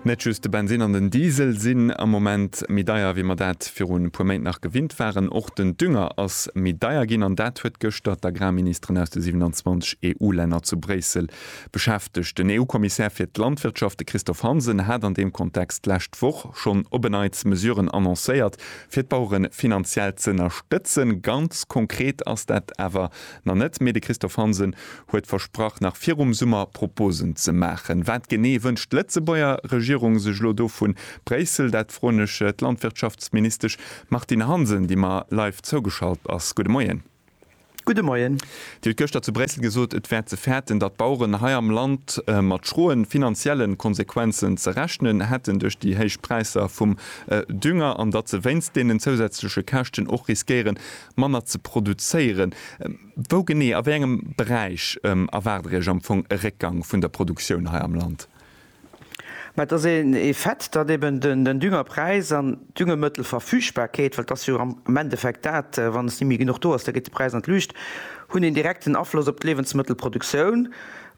Net just de Bensinn an den Diesel sinn am Moment méi deier, wéi mer dat virun e puer Méint nach gewinnt waren. Och den Dünger ass méi deier ginn an dat huet gëschter d'Agrarministeren aus de 27 EU-Länner zu Bréissel beschäftegt. Den EU-Kommissär fir d'Landwirtschaft, de Christophe Hansen, hat an deem Kontext d'lescht Woch schonn op e Neits Mesuren annoncéiert, fir d'Bauere finanziell z'ënnerstëtzen. Ganz konkret ass dat awer nach net, mee de Christophe Hansen huet versprach nach virum Summer Proposen ze maachen. Wat genee wënscht d'Lëtzebuerger Regierung sech elo do vu Bréissel? Dat froen ech d'Landwirtschaftsministesch Martine Hansen, déi mer live zougeschalt ass. Gudde Moien. Gudde Moien. Dir hutt gëschter zu Bréissel gesot, et wär ze fäerten, datt d'Baueren hei am Land mat schroen finanziellen Konsequenzen ze rechnen hätten duerch déi héich Präisser vum Dünger an datt se wéinst deenen zousätzleche Käschten och riskéieren manner ze produzéieren. Wou genee, a wéi engem Beräich erwaart Der Iech am Fong e Réckgang vun der Produktioun hei am Land? Mä et ass ee Fait, datt eben den Düngerpräis an d'Düngemëttelverfügbarkeet, well et ass jo am Endeffekt dat, wann se ni méi genuch do ass, da geet de Präis an d'Luucht, hunn een direkten Afloss op d'Liewensmëttelproduktioun,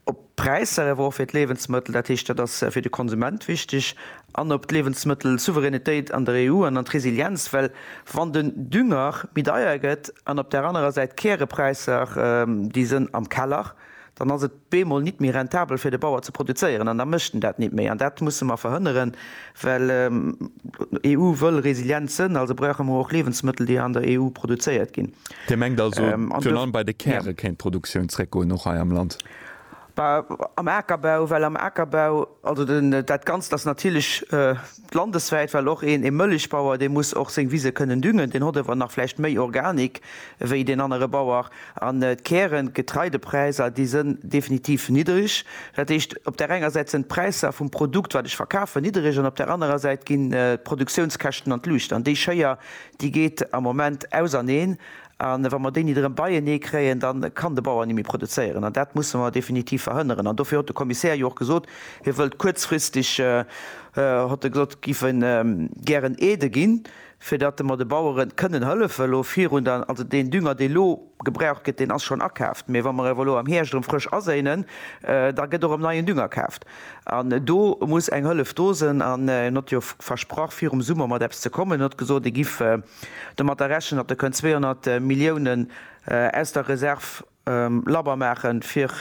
op D'Präisser awer och fir d'Liewensmëttel, dat heescht, dat ass fir de Konsument wichteg, an op d'Liewensmëttelsouveränitéit an der EU an an d'Resilienz. Well wann den Dünger méi deier gëtt an op där anerer Säit d'Kärepreisser, déi sënn am Keller, dann ass et bemol nit méi rentabel fir de Bauer ze produzéieren an da mécht en dat nit méi. An dat musse mer verhënneren, well EU wëll resilient sënn, also brauche mer och Liewensmëttel, déi an der EU produzéiert ginn. Dir mengt also, virun allem bei de Käre kéint d'Produktioun zréckgoen, och hei am Land? Am Akerbau, well am Akerbau, also dat Ganzt ass natierlech landeswäit, well och een e Mëllechbauer, dee muss och seng Wise kënnen düngen, deen hott ewer nach vläicht méi Organik wéi deen anere Bauer. An d'Kären, d'Getreidepräiser, déi sënn definitiv niddreg. Dat heescht, op där enger Säit sënn d'Präisser vum Produkt, wat ech verkafen, niddreg an op där anerer Säit ginn d'Produktiounskäschten an d'Luucht an déi Schéier, déi geet am Moment auserneen A wa mer déi nit erëm beienee kréien, da kann de Bauer nit méi produzéieren. An dat musse mer definitiv verhënneren. An dofir hott de Kommissär jo och gesot, hie wëllt kuerzfristeg, hott e gesot, giff e gären Aide ginn, fir datt mer de Bauere kënnen hëllefen elo virun der, also deen Dünger, dee elo gebraucht gëtt, deen ass schonn akaaft, mee wa mer awer elo am Hierscht erëm frësch aséinen, da gëtt och erëm neien Dünger kaaft. An do muss eng Hëllef do sënn. An hien hott jo versprach virum Summer mat eppes ze kommen. Hien hott gesot, hie giff Domat da rechnen, datt Der kënnt 200 Milliounen aus der Reserv labber maache fir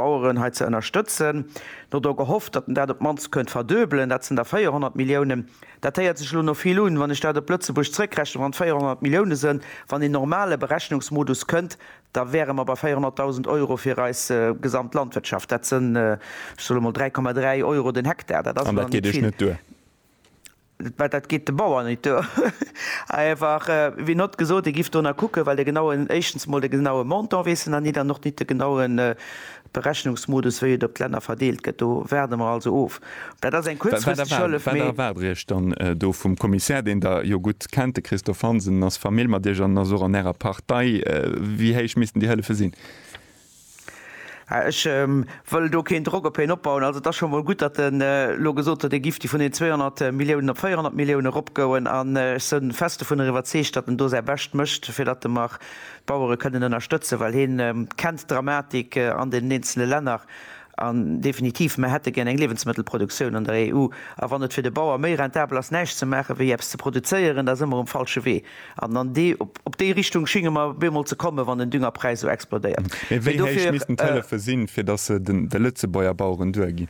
d'Baueren hei ze ënnerstëtzen. Mir hu do gehofft, datt Der dat op d'mannst kënnt verduebelen, dat sinn da 400 Milliounen. Dat héiert sech elo no vill un. Wann ech dat op Lëtzebuerg zréckrechnen, wann et 400 Milliounen sënn, wann een normale Berechnungsmodus kënnt, da wäre mer bei 400.000 Euro fir eis gesamt Landwirtschaft. Dat sënn, ech soe mol 3,3 Euro den Hektar. Dat ass elo net vill. Wat, dat geet de Bauer nit duer. Awer wéi not gesot, ee giff do na kucken, well de genauen, éischtens mol de genaue Montant weess en na nit an och nit de genaue Berechnungsmodus, wéi et op d'Länner verdeelt gëtt. Do waarde mer also of. Dat ass eng kuerzfristeg Hëllef, mee. Wat erwaart Dir Iech dann do vum Kommissär, deen Der jo gutt kennt? De Christophe Hansen ass Famill mat Iech an ass och an Ärer Partei. Wéi héich missten déi Hëllefe sinn? Ech wëll do keen Drock op hien opbauen. Also, et ass scho mol gutt, datt en elo gesot huet, e giff déi vun den 200 Milliounen op 400 Milliounen eropgouen. An ech sinn fest dovunner iwwerzeegt, datt en do säi Bescht mécht, fir datt mer d'Bauere kënnen ënnerstëtzen, well hie kennt d'Dramatik an den eenzele Länner. An definitiv, mer hätte gär eng Liewensmëttelproduktioun an der EU. A wann et fir de Bauer méi rentabel ass, näischt ze maachen, wéi eppes ze produzéieren, da si mer um falsche Wee. An an dee, op déi Richtung schinge mer bemol ze kommen, wann den Düngerpräis esou explodéiert. Mee wéi héich missten d'Hëllefe sinn, fir datt se de Lëtzebuerger Baueren duerginn?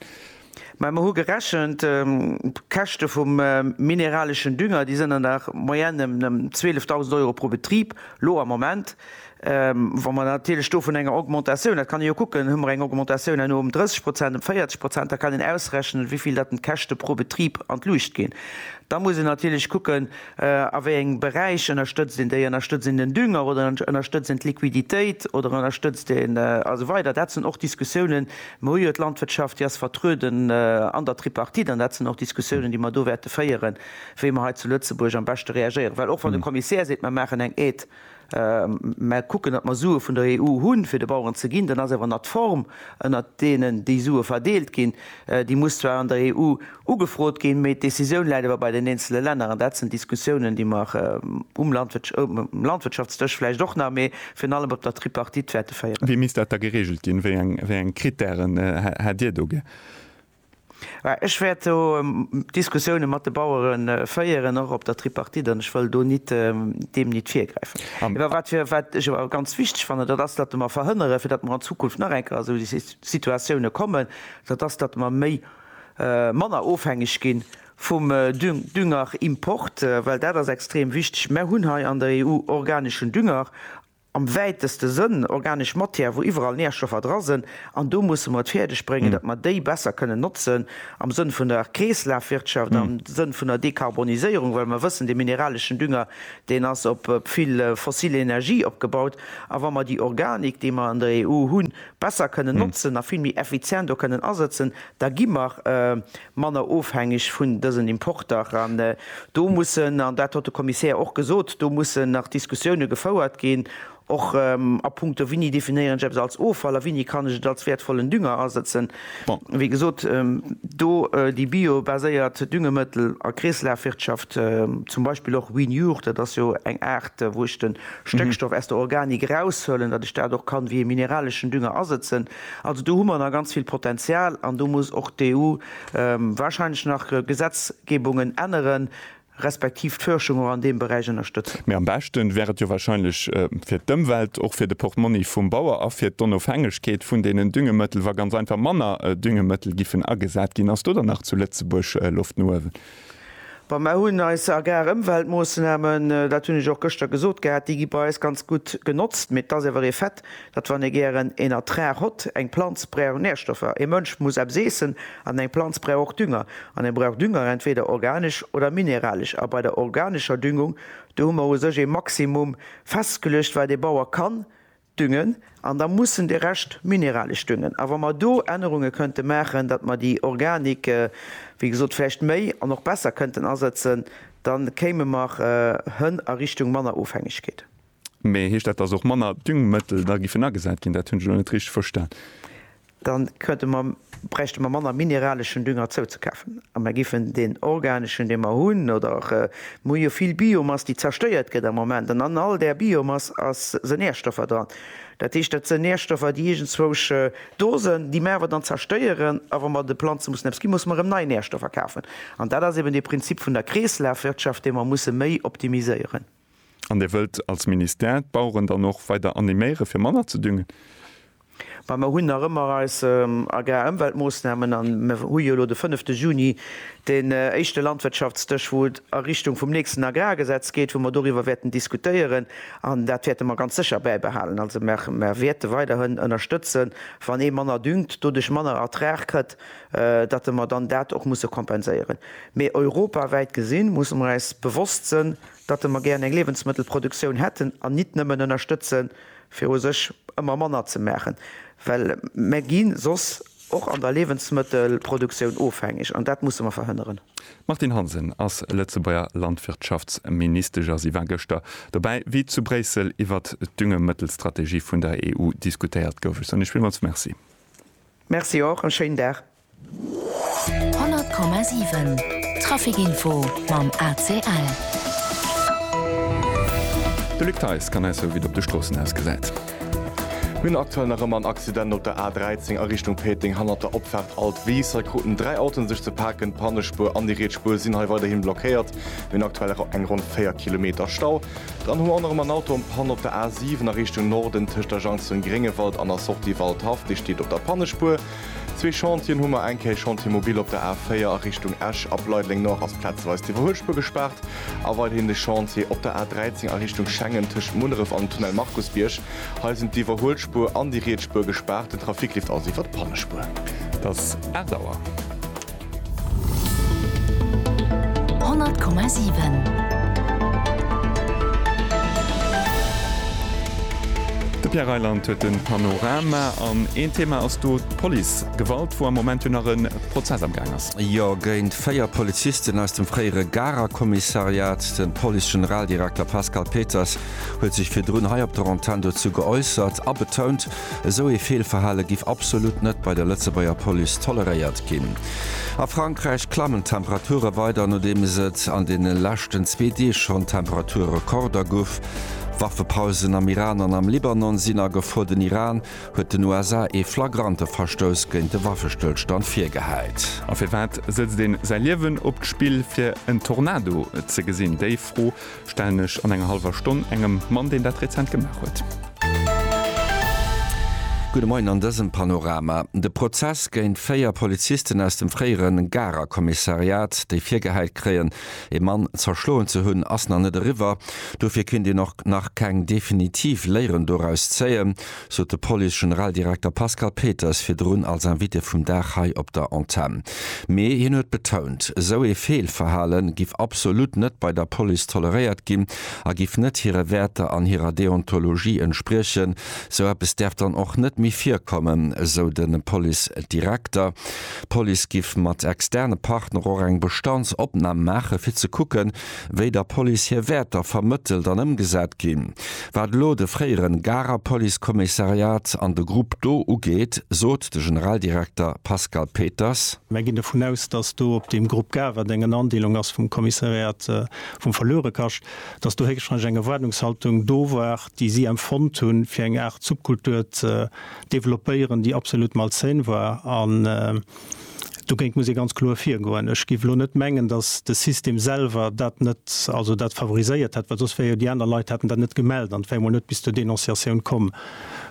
Mä mer hu gerechent, d'Käschte vum mineraleschen Dünger, déi sinn an der Moyenne ëm 12.000 Euro pro Betrib, lo am Moment. Wa mer natierlech do vun enger Augmentatioun, dat kann ee jo kucken, hu mer eng Augmentatioun herno ëm 30 Prozent, ëm 40 Prozent, da kann een ausrechnen, wéi vill dat den d'Käschte pro Betrib an d'Luucht ginn. Da muss een natierlech kucken, a wéi engem Beräich ënnerstëtzt een déi. Ënnerstëtzt een den Dünger oder ënnerstëtzt een d'Liquiditéit oder ënnerstëtzt een a sou weider. Dat sinn och Diskussiounen. Mir hu jo d'Landwirtschaft, déi ass vertrueden an der Tripartite an dat sinn och Diskussiounen, déi mer do wäerte féieren, wéi mer hei zu Lëtzebuerg am beschte reagéieren. Well och wann de Kommissär seet, mer maachen eng Aide Mer kucken, datt mer Sue vun der EU hunn, fir de Baueren ze ginn. Dann ass awer nach d'Form, ënnert deenen déi Sue verdeelt ginn, déi muss zwar an der EU ugefrot ginn, mee d'Decisioun läit awer bei den eenzele Länner. An dat sinn Diskussiounen, déi mer um Landwirtschaftsdësch vläicht och nach, mee virun allem op der Tripartite wäerte féieren. Wéi misst dat da gereegelt ginn? Wéi eng Krittären hätt Dir do gär? Ech wäert do Diskussioune mat de Bauere féieren, och op der Tripartite, an ech wëll do nit deem nit virgräifen. Mä wat fir, wat ech awer ganz wichteg fannen, dat ass, datt mer verhënnere fir datt mer an Zukunft nach eng Kéier a sou Situatioune kommen, dat ass, datt mer méi, manner ofhängeg gi vum Düngerimport, well dat ass extrem wichteg. Mer hunn hei an der EU organeschen Dünger. am wäiteste Sënn, organesch Matière, wou iwwerall Nährstoffer dra sinn, an do musse mer et fäerdeg bréngen, datt mer déi besser kënnen notzen am Sënn vun der Kreeslafwirtschaft, am Sënn vun der Dekarboniséierung, well mer wëssen, dee mineraleschen Dünger, deen ass op vill fossil Energie opgebaut, a wa mer déi Organik, déi mer an der EU hunn, besser kënnen notzen a vill méi effizient och kënnen asëtzen, da gi mer, manner ofhängeg vun dësen Importer. An do mussen, an dat hott de Kommissär och gesot, do mussen nach Diskussioune gefouert ginn, och a puncto wini definéieren ech eppes als Offall a wini kann ech et als wäertvollen Dünger asëtzen. Bon, wéi gesot, do déi biobaséiert Düngemëttel a Kreeslafwirtschaft, zum Beispill och Winiure, dat ass jo eng Aart, wou ech de Stéckstoff aus der Organik eraushuelen, datt ech dat och kann wéi ee mineraleschen Dünger asëtzen. Also do hu mer nach ganz vill Potenzial an do muss och d'EU wahrscheinlech nach Gesetzgebungen änneren, respektiv d'Fuerschung och an deem Beräich ënnerstëtzen. Mee am beschten wär et jo wahrscheinlech fir d'Ëmwelt, och fir de Portmonni vum Bauer a fir d'Onofhängegkeet vun deenen Düngemëttel, wa ganz einfach manner Düngemëttel giffen agesat ginn. Ass do dann nach zu Lëtzebuerg Loft no uewen? Bon, mer hunn eis Agrarëmweltmoosnamen, dat hunn ech och gëschter gesot gehat, déi gi bei eis ganz gutt genotzt. Mee et ass awer ee Fait, datt wann ee gären een Ertrag hott, eng Planz brauch Nährstoffer, ee Mënsch muss eppes iessen an eng Planz brauch och Dünger. An e brauch Dünger entweder organesch oder mineralesch. A bei der organescher Düngung, do hu mer u sech ee Maximum festgeluecht, wat ee Bauer kann Düngen, an da mussen de Rescht mineralesch Düngen. A wa mer do Ännerunge kënnte maachen, datt mer déi Organik, wéi gesot, vläicht méi an och besser kënnten asetzen, da kéime mer hën a Richtung manner Ofhängegkeet. Mee heescht dat, datt och manner Düngmëttel da giffen agesat ginn? Dat hunn ech elo net richteg verstan. Da bräichte mer manner mineraleschen Dünger zouzekafen a mer giffen deen organeschen, dee mer hunn, oder mer hu jo vill Biomass, déi zerstéiert gëtt am Moment, an an all där Biomass si Nährstoffer dran. Dat heescht, dat sinn Nährstoffer, déi iergendzwousch do sinn, déi mer awer dann zerstéieren. A wa mer de Planze mussen eppes ginn, musse mer erëm nei Nährstoffer kafen. An dat ass eben dee Prinzip vun der Kreeslafwirtschaft, dee mer musse méi optimiséieren. An Dir wëllt als Ministère d'Baueren dann och weider animéiere fir manner ze düngen? Mä mer hunn nach ëmmer eis Agrarëmweltmoossnamen a mer hu jo elo de fënnefte Juni deen éischte Landwirtschaftsdësch, wou et a Richtung vum nächsten Agrargesetz geet, wou mer doriwwer wäerten diskutéieren. An dat wäerte mer ganz sécher bäibehalen. Also mer wäerte weiderhin ënnerstëtzen, wann ee manner düngt, doduerch manner Ertrag kritt, datt mer dann dat och musse kompenséieren. Mee europawäit gesinn, musse mer eis bewosst sënn, datte mer gären eng Liewensmëttelproduktioun hätten an nit nëmmen ënnerstëtze fir u sech ëmmer manner ze maachen, well mer gi soss och an der Liewensmëttelproduktioun ofhängeg an dat musse mer verhënneren. D'Martine Hansen ass Lëtzebuerger Landwirtschaftsministesch a si war gëschter dobäi, wéi zu Bréissel iwwert d'Düngemëttelstrategie vun der EU diskutéiert gouf. Ech soen Iech villmools Merci. Merci och, e schéinen Dag. 100,7 Traficinfo mam ACL. De Luc Theis kann eis soe wéi et op de Stroossen ausgesäit. Mir hunn aktuell nach ëmmer en Accident op der A13 a Richtung Péteng hannert der Opfaart Alt Weess. Hei kruten dräi Autoen sech ze paken. D'Pannespuer an déi riets Spuer sinn hei weiderhin blockéiert. Mir hunn aktuell eng ronn 4 Kilometer Stau. Dann hu mer och nach ëmmer en Auto an Panne op der A7 a Richtung Norden tëscht der Jonction Gréngewald an der Sortie Waldhaff. Dee steet op der Pannespuer. Zwee Chantieren hu mer, eng Kéier Chantier Mobil op der A4 a Richtung Esch, ab Leideleng Nord ass plazeweis d'Iwwerhuelspuer gespaart a weiderhin de Chantier op der A13 a Richtung Schengen tëscht Munneref an dem Tunnel Markusbierg. Hei sinn d'Iwwerhuelspuer an déi riets Spuer gespaart, den Trafic leeft also iwwert d'Pannespuer. Et ass 8 Auer. Honnert Komma siwen. De Pierre Reyland huet den Panorama an een Thema ass do d'Police Gewalt wou am Moment jo nach en Prozess am Gaang ass. Jo, géint 4 Polizisten aus dem fréiere Garer Kommissariat. Den Police Generaldirekter Pascal Peters huet sech virdrun hei op der Antenn dozou geäussert a betount, Esou ee Feelverhale giff absolut net bei der Lëtzebuerger Police toleréiert ginn. A Frankräich klammen d'Temperature weider, nodeems et an deene leschten zwee Deeg schonn Temperature-Rekorder gouf. Waffepausen am Iran an am Libanon sinn a Gefor. Den Iran huet den USA ee flagrante Verstouss géint de Waffestëllstand virgehäit. A firwat sëtzt een säi Liewen op d'Spill fir en Tornado ze gesinn? Déi Fro Stellen ech an enger halwer Stonn engem Mann deen dat rezent gemaach huet. Gudde Moien an dësem Panorama. De Prozess géint véier Polizisten aus dem fréiere Garer Kommissariat, déi virgehäit kréien, ee Mann zerschloen ze hunn, ass nach net eriwwer. Dofir kinnt een och nach keng definitiv Léieren doraus zéien. sot de Police-Generaldirekter Pascal Peters virdrun als Invité vum Dag hei op der Antenn. Mee hien huet betount, esou ee Feelverhale giff absolut net bei der Police toleréiert ginn a giff net hire Wäerter an hirer Deontologie entspriechen. Esou eppes däerf dann och net méi virkommen, esou de Police-Direkter. D'Police giff mat externe Partner och eng Bestandsopnam maachen, fir ze kucken, wéi der Police hir Wäerter vermëttelt an ëmgesat ginn. Wat elo de fréiere Garer Policekommissariat an de Grupp do ugeet, sot de Generaldirekter Pascal Peters. Mär ginn dovun aus, datt do op deem Grupp Garer, deen eng Andeelung ass vum Kommissariat vum Verluerekascht, datt do héchstwahrscheinlech eng Erwaardungshaltung do war, déi si empfonnt hunn, fir eng Aart Subkultur ze developpéieren, déi absolut malsain war. Dogéint muss ee ganz kloer virgoen. Ech géif elo net mengen, datt de System selwer dat net, also dat favoriséiert hätt, well soss wär jo, déi aner Leit hätten dat net gemellt an et wär emol net bis zur Denonciatioun komm.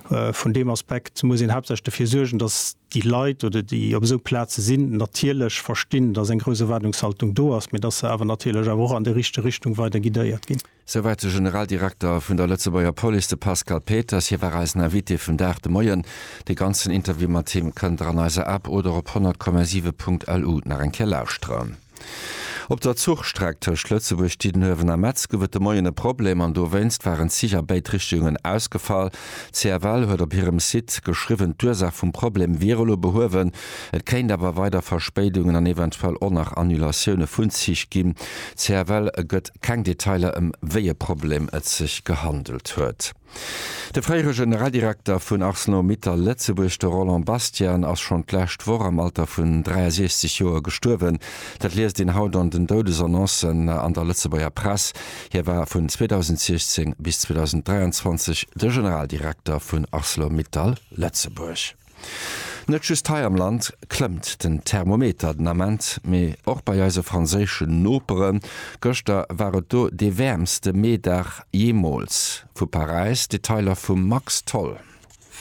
Vun deem Aspekt muss een haaptsächlech dofir suergen, datt déi Leit oder déi op esou Plaze sinn, natierlech verstinn, datt eng grouss Erwaardungshaltung do ass, mee datt se awer natierlech awer och an déi richteg Richtung weider guidéiert ginn. Souwäit de Generaldirekter vun der Lëtzebuerger Police, de Pascal Peters. Hie war eisen Invité vum Dag de Moien. De ganzen Interview mat him kënnt der an eiser App oder op 100,7 Punkt LU nach eng Kéier lauschteren. Op der Zuchstreck tëscht Lëtzebuerg, Diddenuewen a Metz gouf et de Moien e Problem an dowéinst waren d'Zich a béid Richtungen ausgefall. D'CFL huet op hirem Site geschriwwen, d'Ursaach vum Problem wier elo behuewen. Et kéint awer weider Verspéidungen an eventuell och nach Annulatioune vun Zich ginn. D'CFL gëtt Keng Detailer ëm wéi e Problem et sech gehandelt huet. De fréiere Generaldirekter vun Arcelor Mittal Lëtzebuerg, de Roland Bastian, ass schonn d'lescht Woch am Alter vun 63 Joer gestuerwen. Dat liest een haut an den Doudesannoncen an der Lëtzebuerger Press. Hie war vun 2016 bis 2023 de Generaldirekter vun Arcelor Mittal Lëtzebuerg. Net just hei am Land klëmmt den Thermometer den Ament, mee och bei eise franséischen Noperen. Gëschter war et do dee wäermste Meedag jeemools. Vu Paräis Detailer vum Max Tholl.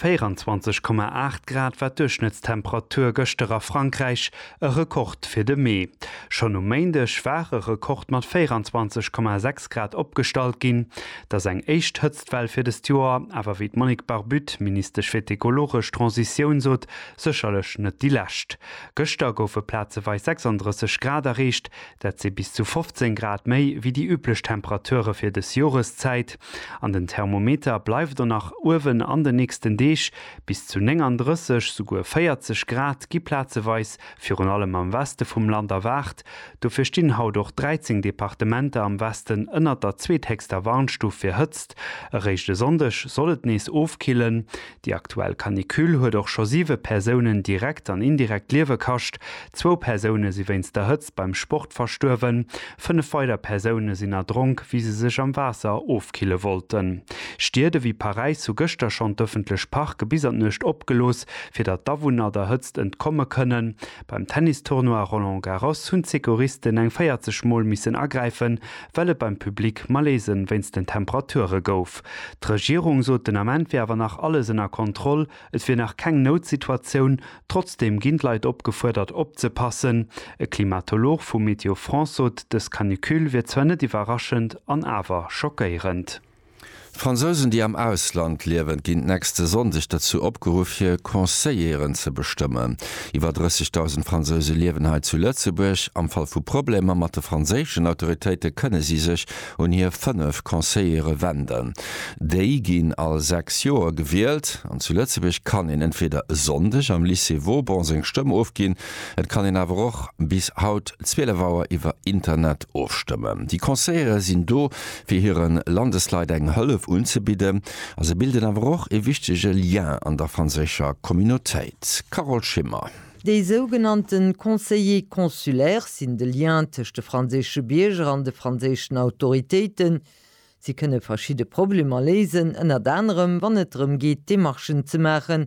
24,8 Grad war d'Duerchschnëttstemperatur gëschter a Frankräich, e Rekord fir de Mee. Schonn um Méindeg war e Rekord mat 24,6 Grad opgestallt ginn. Dass eng éischt D'Well fir dëst Joer awer, wéi d'Monique Barbut, Ministesch fir d'ekologesch Transitioun sot, sécherlech net déi lescht. Gëschter goufe plazeweis 36 Grad erreecht, dat si bis zu 15 Grad méi wéi déi üblech Temperature fir dës Joreszäit. An den Thermometer bleift och nach uewen an den nächsten Deeg, bis zu 39, souguer 40 Grad gi plazeweis virun allem am Weste vum Land erwaart, Dofir stinn haut och 13 Departementer am Westen ënnert der zweethéchster Warnstuf fir Hëtzt. Eréischt e Sonndeg soll et nees ofkillen. Déi aktuell Canicule huet och scho siwe Persounen direkt an indirekt d'Liewe kascht. Zwou Persoune si wéinst der Hëtzt beim Sport verstuerwen. Fënnef weider Persoune sinn erdronk, wéi se sech am Waasser ofkille wollten. Stied ewéi Paräis hu gëschter schonn d'ëffentlech Parke bis an d'Nuecht opgelooss, fir datt d'Awunner der Hëtzt entkomme kënnen. Beim Tennistournoi Roland Garros hunn d'Secouristen eng 40 Mol missen agräifen, well et beim Public Malaisen wéinst den Temperature gouf. D'Regierung sot den Ament wier awer nach alles ënner Kontroll, et wier nach keng Noutsituatioun. Trotzdeem ginn d'Leit opgefuerdert opzepassen. E Klimatolog vu Météo France sot, dës Canicule wier zwar net iwwerraschend an awer schockéierend. D'Fransousen, déi am Ausland liewen, ginn d'nächste Sonndeg dozou opgeruff, hir Conseilleren ze bestëmmen. Iwwer 30.000 Fransouse liewen hei zu Lëtzebuerg. Am Fall vu Problemer mat de franséischen Autoritéite kënne si sech un hir fënnef Conseillere wenden. Déi ginn all sechs Joer gewielt. An zu Lëtzebuerg kann een entweeder e Sonndeg am Lycée Vauban seng Stëmm ofginn, et kann een awer och bis haut 12 Auer iwwer Internet ofstëmmen. Déi Conseillere sinn do, fir hire Landesleit eng Hëllef unzebidden a se bilden awer och e wichtege Lien an der franséischer Communautéit. Carole Schimmer. Déi sougenannte Conseillers consulaires sinn de Lien tëscht de franséische Bierger an de franséischen Autoritéiten. Si kënne verschidde Problemer léisen, ënnert anerem wann et drëm geet Demarchen ze maachen,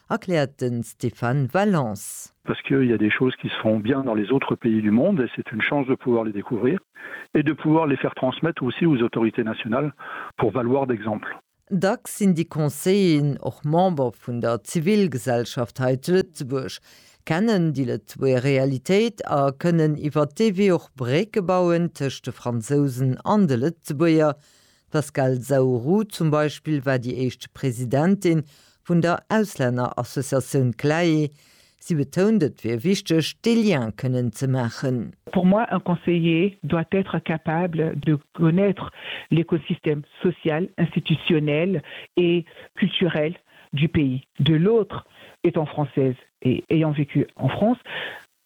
Erkläert de Stéphane Valence. Parce qu'il y a des choses qui se font bien dans les autres pays du monde et c'est une chance de pouvoir les découvrir et de pouvoir les faire transmettre aussi aux autorités nationales pour valoir d'exemple. Dacks sinn déi Conseilleren och Member vun der Zivilgesellschaft hei zu Lëtzebuerg, kennen déi Lëtzebuerger Realitéit a kënnen iwwer dee Wee och Brécke bauen tëscht de Fransousen an de Lëtzebuerger, D'Pascale Zaourou zum Beispill war déi éischt Presidentin vun der Auslännerassociatioun CLAE. Si betount, et wier wichteg, dee Lien kënnen ze maachen. Pour moi, un conseiller doit être capable de connaître l'écosystème social, institutionnel et culturel du pays de l'autre. Étant française et ayant vécu en France,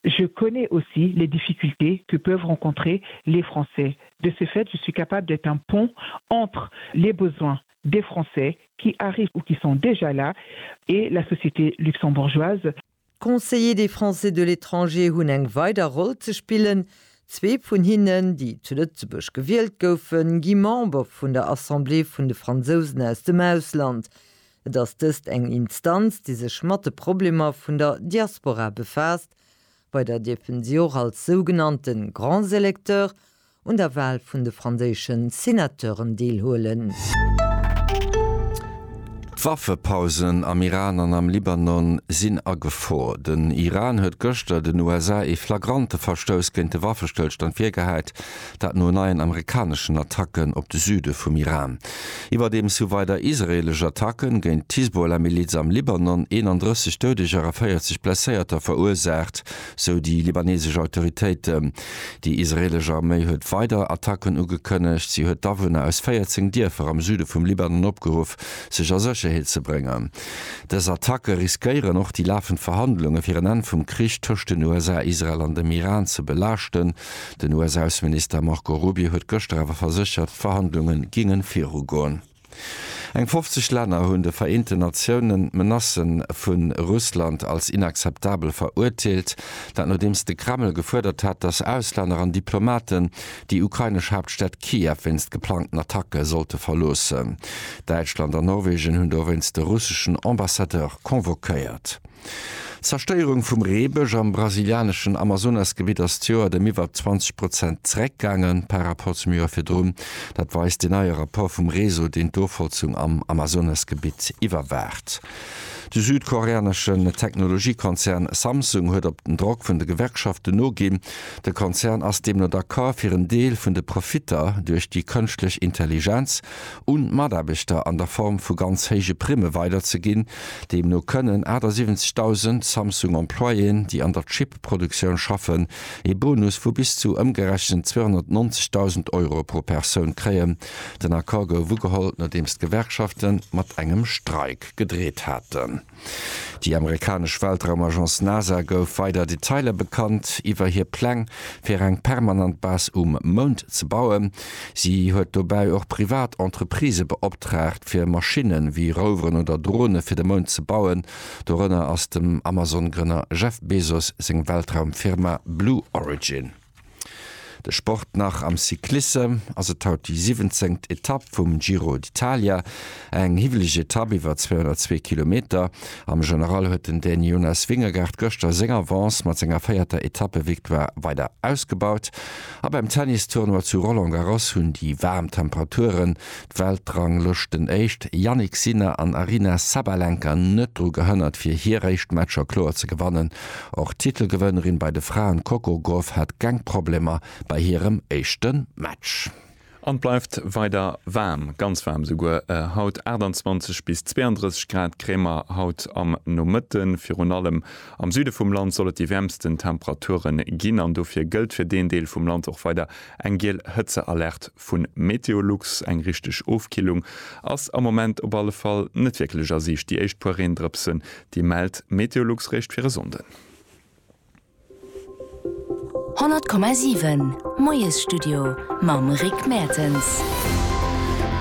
Je connais aussi les difficultés que peuvent rencontrer les Français. De ce fait, je suis capable d'être un pont entre les besoins des Français qui arrivent ou qui sont déjà là et la société luxembourgeoise. D'Conseillers des Français de l'étranger hunn eng weider Roll ze spillen. Zwee vun hinnen, déi zu Lëtzebuerg gewielt goufen, gi Member vun der Assemblée vun de Fransousen aus dem Ausland. Et ass dëst eng Instanz, déi sech mat de Problemer vun der Diaspora befaasst. Bei der dierfen si och als sougenannte grands électeurs un der Wahl vun de franséische Senateuren deelhuelen. D'Waffepausen am Iran an am Libanon sinn a Gefor. Den Iran huet gëschter den USA ee flagrante Verstouss géint de Waffestëllstand virgehäit. Dat no neien amerikaneschen Attacken op de Süde vum Iran. Iwwerdeems hu weider israeelesch Attacke géint d'Hisbollah-Miliz am Libanon 31 Doudeger a 40 Blesséierter verursaacht, sou déi libanesesch Autoritéiten. Déi israeelesch Arméi huet weider Attacken ugekënnegt. Si huet d'Awunner aus 14 Dierfer am Süde vum Libanon opgeruff, sech a Sécherheet ze bréngen. Dës Attacke riskéieren och déi lafend Verhandlunge fir en Enn vum Krich tëscht den USA, Israel an dem Iran ze belaaschten, Den US-Ausseminister Marco Rubio huet gëschter awer verséchert, d'Verhandlunge géinge viru goen. Eng 50 Länner hunn de Vereenten Natioune Menacë vu Russland als inakzeptabel verurteelt. Dat nodeems de Kreml gefuerdert hat, datt Auslänner an Diplomaten déi ukrainesch Haaptstad Kiew wéinst geplangten Attacke sollte verloossen. Däitschland an Norwegen hunn dowéinst de russeschen Ambassadeur convoquéiert. D'Zerstéierung vum Reebësch am brasilianeschen Amazonasgebitt ass d'Joert ëm iwwer 20 Prozent zeréckgaange par Rapport zum Joer virdrun. Dat weist deen neie Rapport vum Réseau, deen d'Ofholzung am Amazonasgebitt iwwerwaacht. De südkoreaneschen Technologiekonzern Samsung huet op den Drock vun de Gewerkschaften noginn. De Konzern ass deemno d'accord, fir en Deel vun de Profitter duerch déi kënschtlech Intelligenz, un d'Mataarbechter an der Form vu ganz héije Primme weiderzeginn. Deemno kënnen 78.000 Samsung-Employéen, déi an der Chip-Produktioun schaffen, ee Bonus vu bis zu ëmgerechent 290.000 Euro pro Persoun kréien. Den Accord gouf ugeholl, nodeems d'Gewerkschafte mat engem Streik gedreet haten. Déi amerikanesch Weltraumagence NASA gouf weider Detailer bekannt iwwer hir Pläng, fir eng permanent Base um Mound ze bauen. Si huet dobäi och privat Entreprisë beoptraagt, fir Maschinne wéi Roveren oder Drone fir de Mound ze bauen. Dorënner ass dem Amazon-Grënner Jeff Bezos seng Weltraumfirma Blue Origin. De Sport nach am Cyclissem, ass et haut déi siwwenzengt Etapp vum Giro d'Italia, eng hiwweleg Etapp iwwer 202 Kilometer. Am General huet den Dän Jonas Vingegaard gëschter seng Avance mat senger véierter Etappevictoire weider ausgebaut. A beim Tennistournoi zu Roland Garros hunn déi waarm Temperaturen D'Weltranglëschten Éischt Jannik Sinner an Aryna Sabalenka net dru gehënnert fir hir éischt Matcher kloer ze gewannen. Och d'Titelgewënnerin bei de Fraen Coco Gauff hat keng Problemer bei hirem éischte Match. An et bleift weider waarm, ganz waarm esouguer haut, 28 bis 32 Grad kréie mer haut am Nomëtte. Virun allem am Süde vum Land soll et déi wäermsten Temperature ginn an dofir gëllt fir deen Deel vum Land och weider eng giel Hëtzealerte vun Meteolux. Eng richteg Ofkillung ass am Moment op alle Fall net wierklech a Siicht. Déi éischt puer Reendrëpsen, déi mellt Meteolux réischt fir e Sonnden. 100,7 Moiesstudio mam Rick Mertens.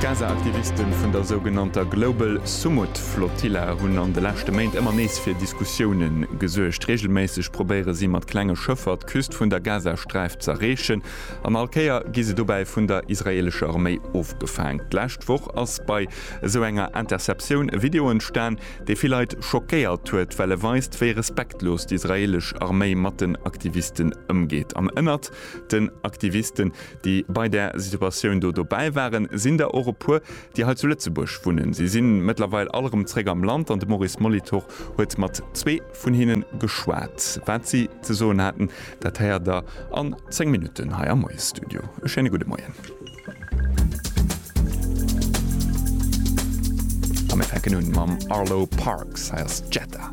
D'Gaza-Aktiviste vun der sougenannter Global Sumud Flotilla hunn an de leschte Méint ëmmer nees fir Diskussioune gesuergt. Reegelméisseg probéiere si mat klenge Schëffer d'Küst vun der Gazasträif z'erreechen. An all Kéier gi se dobäi vun der israeelescher Arméi ofgefaangen. D'lescht Woch ass bei esou enger Interceptioun e Video entstan, dee vill Leit schockéiert huet, well e weist, wéi respektlos d'israeelesch Arméi mat den Aktivisten ëmgeet. An ënnert den Aktivisten, déi bei där Situatioun do dobäi waren, sinn der och e puer, déi hei zu Lëtzebuerg wunnen. Si si mëttlerweil all erëm zeréck am Land an de Maurice Molitor huet mat zwee. vun hinnen geschwat. Wat si ze soen haten, dat héiert der an 10 Minutten hei am Moiesstudio. E schéine gudde Moien. A mir fänken un mam Arlo Parks. Hei ass Jetta.